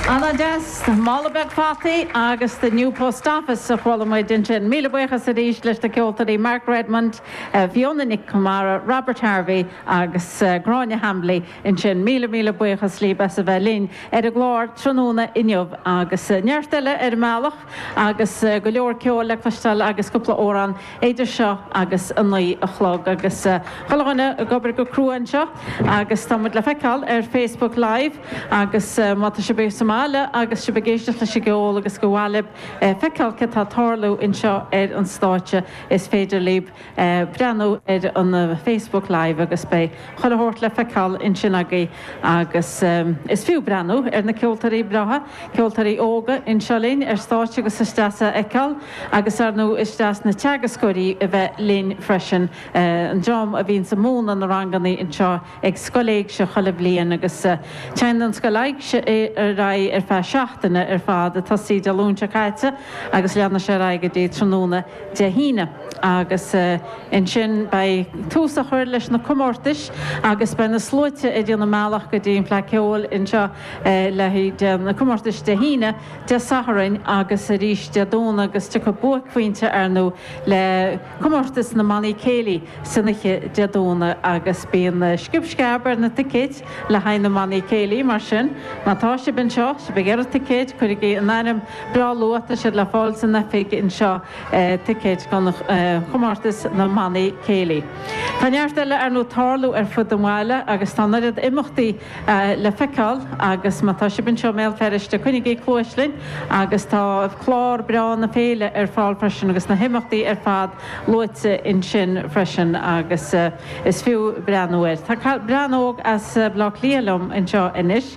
Ana dheas! Mála beag fataí agus The New Post Office a chuala muid ansin. Míle buíochas arís leis na ceoltóirí Mark Redmond, Fiona Nic Conmara, Robert Harvey agus Gráinne Hambly ansin. Míle míle buíochas libh as a bheith linn ar an gclár tráthnóna inniu agus neart eile ar an mbealach agus go leor ceoil le cloisteáil agus cúpla amhrán idir seo agus a naoi a chlog agus chuile dhuine ag obair go crua anseo agus tá muid le feiceáil ar Facebook Live agus má tá sibh sa mbaile agus sibh ag éisteacht leis an gceol agus gur mhaith libh feiceáil céard tá tarlú anseo ar an stáitse is féidir libh breathnú ar an Facebook Live agus beidh chuile shórt le feiceáil ansin agaibh. Agus is fiú breathnú ar na ceoltóirí breátha, ceoltóirí óga anseo linn ar stáitse agus is deas é a fheiceáil agus ar ndú is deas na teagascóirí a bheith linn freisin, an dream a bhíonns ag múnadh na rangannaí anseo ag Scoil Éigse chuile bhliain agus téann an Scoil Éigse ar aghaidh ar feadh seachtaine ar fad, a tosaíodh Dé Luain seo caite agus leanfaidh sé ar aghaidh go dtí tráthnóna. Dé hAoine, agus ansin beidh tús á chur leis na comórtais agus beidh na sluaite ag déanamh a mbealach go dtí an Fleadh Ceoil anseo le haghaidh na comórtais Dé hAoine, Dé Sathairn agus arís Dé Domhnaigh agus tiocfaidh buaicphointe arnó le comórtas na mBannaí Céilí san oíche Dé Domhnaigh agus bíonn sciob sceab ar na ticéid le haghaidh na mBannaí Céilí mar sin má tá sibh anseo, sibh ag iarraidh ticéid, cuirigí an ainm. Breá luath tá siad le fáil san oifig anseo, ticéid don chomórtas na mBannaí Céilí. Tá neart eile arnó tarlú ar fud an bhaile agus tá an oiread imeachtaí le feiceáil agus má tá sibh anseo i mBéal Feirste coinnigí cluais linn agus tá clár breá na féile ar fáil freisin agus na himeachtaí ar fad luaite ansin freisin agus is fiú breathnú air. Tá bean óg as Baile Átha Cliath liom anseo anois.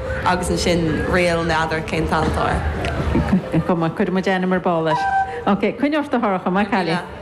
agus ansin ríl n'fheadar cén t-ainm atá air. Go maith. Cuirfidh muid ainm ar ball air. Ok. Coinnigh ort a Shorcha. Maith an cailín.